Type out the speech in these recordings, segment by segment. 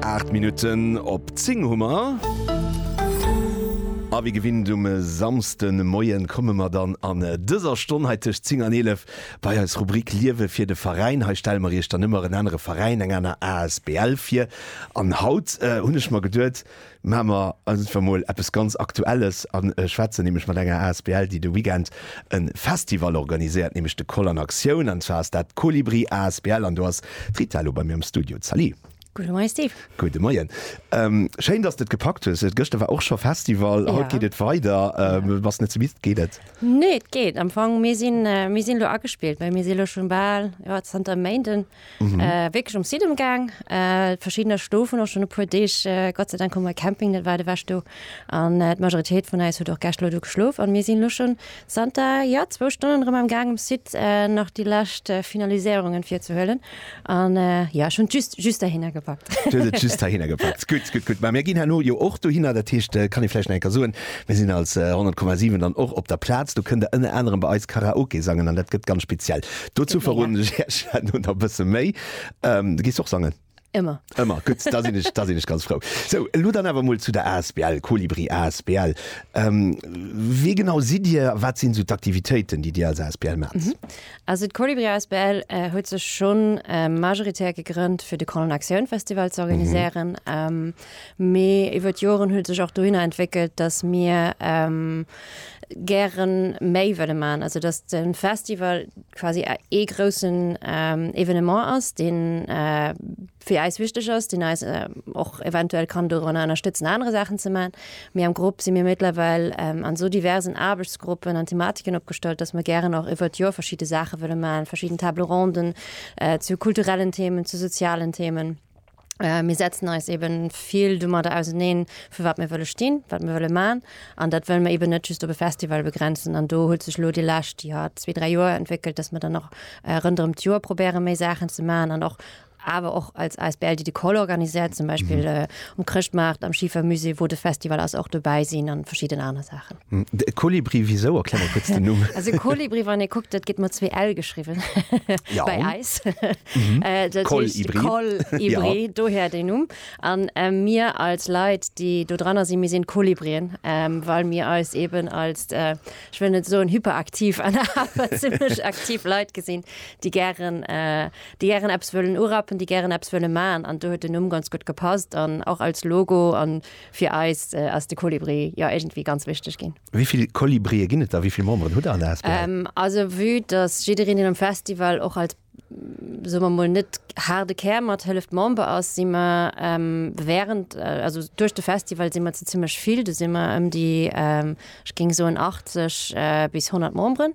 Aacht Minutten op zéng hu mer. A wéi gewinnt um e Samsdemoie komme mer dann an dëser Stonn hei tëscht zéng an eelef bei eis Rubrik Liewe fir de Veräin. Hei stelle mer Iech dann ëmmer en anere Veräin, eng aner asbl vir. An haut hunn ech mer geduet, Maache mer einfach mol eppes ganz Aktuelles a schwätzen nämlech mat enger Asbl, déi de Weekend e Festival organiséiert, nämlech de Koll an Aktioun. An zwar ass dat d'Kolibri Asbl an do ass d'Rita elo bei mir am Studio. Salut! Gudde Moien, Steve! Gudde Moien! Schéin, dass de et gepackt hues. Gëschter war och scho Festival, haut geet et weider. Bass net ze midd? Geet et? Nee, et geet am Fong. Mir sinn elo agespillt, well mir si elo scho bal zanter e Méinden Mhm. Äh, wirklich um Site umgang äh, verschiedener Stufen auch schon e puer Deeg äh, Gott sei Dank kom Camping net war de wäch du an äh, Majoritéit vun eis huet och Gächtlo du geschlof an mir sinn lu schon Santa ja zwo Stunden rem am Gang um Site äh, nach die lacht äh, Finaliséierungen fir ze hëllen an äh, ja schon just just dahinner gepackt. just dahinner gepackt gut gut gut mir ginn hanno jo och du hinner der Techte äh, kann ich flläch enker soen wir sinn als äh, 10,7 dann och op der Platz du kënnt der ënne anderen bei eis Karaoke sangen an dat gëtt ganz speziell. Dozou verroden ech iech elo nach e bësse méi. Du gees och sangen? Ëmmer. Ëmmer, gutt, da sinn ech, da sinn ech ganz frou. Sou, elo dann awer emol zu der Asbl Kolibri Asbl. Wie genau sidd Dir a wat sinn esou d'Aktivitéiten, déi Dir als Asbl maacht? Also d'Kolibri Asbl huet sech schonn majoritär gegrënnt, fir de Colonne Aktioun Festival ze organiséieren. Mee iwwer d'Joren huet sech och dohinner entwéckelt, datt mir gäre méi wëlle maachen, also datt de Festival quasi ee groussen Evenement ass, dee fir eis wichteg ass, deen eis och eventuell kann dorun ënnerstëtzen aner Saachen ze maachen. Mee am Grupp si mir méttlerweil an esou diversen Aarbechtsgruppen an Thematiken opgestallt, datt mer gären och iwwer d'Joer verschidde Saache wëlle maachen, verschidden Table-ronden zu kulturellen Themen, zu sozialen Themen. Äh, mir setzen eis eben vill domadder auseneen, fir wat mir wëlle stinn, wat mir wëlle man. An dat wëll mir eben net just op e Festival begrenzen. An do huet sech lo Dir läscht Dir hat zwee, dräi Joer entwéckelt, dass mir dann noch äh, rënderem d'Joer probéiere méi Saachen ze man an och awer och als ASBL die de Koll organisiert, zum Beispiel mhm. äh, um Krchtmacht, am Schiefermusee, wo de Festival ass och dobäi sinn an verschieden aner Saachen. De Kolibri, wisou? Erklär mol kuerz den Numm. Also Kolibri, wann ee kuckt, dat gëtt mat zwee L geschriwwen bei eis. Kolibri. Kolibri, dohier deen Numm. An mir als Leit, déi do dranner sinn, mir sinn d'Kolibrien, well mir eis eeben als, ech wëll net soen hyperaktiv, awer zimlech aktiv Leit gesinn, déi gären, déi gären eppes wëllen urappen, déi gären eppes wëlle maachen. An do huet den Numm ganz gutt gepasst an och als Logo an Fir eis ass de Kolibri jo iergendwéi ganz wichteg ginn. Wéi vill Kolibrien ginn et der? Wéi vill Memberen hutt der an der asbl? Also vue dass jiddereen deen um Festival och als, soe mer mol, net haarde Kär mathëlleft, Member ass, si mer während, also duerch de Festival si mer zu zimmlech vill. Du si mer ëm déi, ech géing soen, 80 bis 100 Memberen,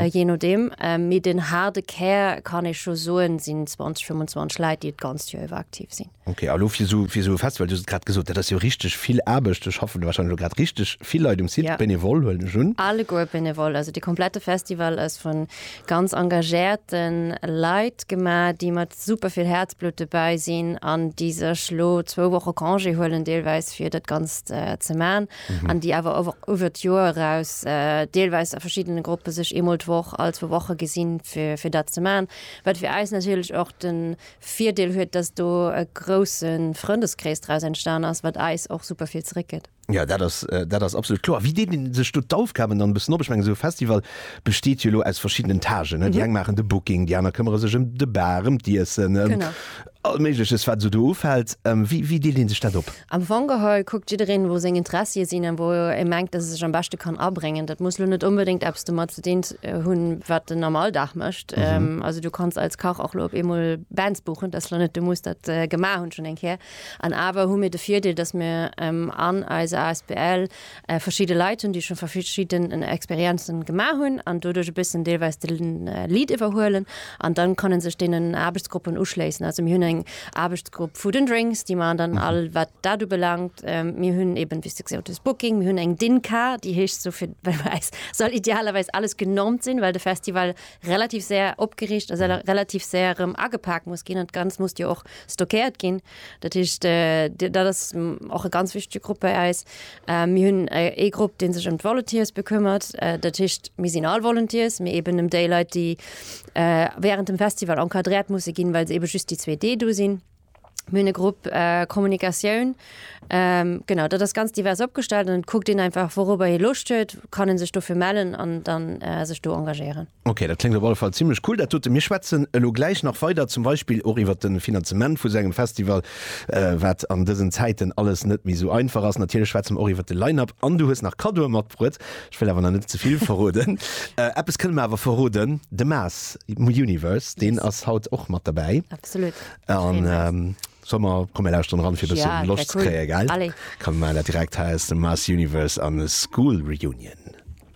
jee nodeem. Mee den haarde Kär, kann ee scho soen, sinn 20, 25 Leit, déi d'ganzt Joer iwwer aktiv sinn. Okay, a lo fir esou fir esou e Festival, du hues et grad gesot, dat ass jo richteg vill Aarbecht, do schaffen jo warscheinlech elo grad richteg vill Leit um Site, Ja. benevole huelen ech un. Alleguer benevole, also de komplette Festival ass vu ganz engagéierte Leit gemaach, déi mat super vill Häerzblutt dobäi sinn an déi sech elo zwou Woche Congé huelen deelweis fir dat Ganzt ze maachen an déi awer ower uewer d'Joer eraus deelweis a verschiddene Gruppe sech eemol d'Woch, all zwou Woche gesinn fir fir dat ze maachen, wat fir eis natierlech och de Virdeel huet, dass do e grousse Frëndeskrees draus entstan ass, wat eis och super vill zeréckgëtt. Jo, dat ass, dat ass absolut kloer. Wéi deelt een sech do d'Aufgaben dann e bëssen op? Ech mengen, esou e Festival besteet jo elo aus verschidden Etagen, ne? Déi eng maachen de Booking, déi aner këmmere sech ëm de Bar, ëm d'Iessen, ëm all Méigleches, wat esou do ufält. Wéi deelt ee sech dat op? Am Fong geholl kuckt jiddereen, wou seng Interessie sinn an wou e mengt, dass e sech am beschte kann abréngen. Dat muss lo net onbedéngt eppes domat ze dinn hunn, wat en am Alldag mécht. Also du kanns als Kach och lo op eemol Bands buchen, dass lo net du muss dat gemaach hunn schonn eng Kéier. An awer hu mir de Virdeel, dass mir an eiser asbl Verschidde Leit hunn, déi scho verschidden Experienzen gemaach hunn an doduerch e bëssen deelweis de Lead iwwerhuelen an dann kann en sech deenen Aarbechtsgruppen uschléissen. Also mir hunn eng Aarbechtsgrupp Food and Drinks, déi man dann all wat dat ubelaangt. Mir hunn eben wéi s de gesot hues Booking, mir hunn eng Dinka, déi heescht sou fir well bei eis soll idealerweis alles genormt sinn, well de Festival relativ séier opgeriicht a relativ séier erëm agepaakt muss ginn an d'Ganzt muss jo och stockéiert ginn. Dat heescht, dat ass och e ganz wichtege Grupp bei eis. Mir hunn ee Grupp, dee sech ëm d'Volunteers bekëmmert. Dat heescht, mir sinn all Volunteers, mee eben ëm déi Leit, déi wärend dem Festival encadréiert musse ginn, well se ebe just déi zwee Deeg do sinn. Mir hunn e Grupp Kommunikatioun. Genau, dat ass ganz divers opgestallt an et kuckt een einfach, wourobber ee Loscht huet, kann e sech dofir mellen an da sech do engagéieren. Ok, dat kléngt op alle Fall zimlech cool, dat dote. Mir schwätzen elo gläich nach weider, zum Beispill och iwwert de Finanzement vu sou engem Festival, wat an dësen Zäiten alles net méi sou einfach ass. Natierlech schwätze mer och iwwert de Line-Up an du hues nach Kaddoe matbruet. Ech wëll awer nach net ze vill verroden. Eppes kënne mer awer verroden, de Mass Universe, deen ass haut och mat derbäi. Absolut, ech freeë mech. An solle mer, komm mir lauschteren eran, fir e bësse Loscht ze kréien, gell? Komm, mir maachen dat direkt. Hei ass de Mass Universe an School Reunion.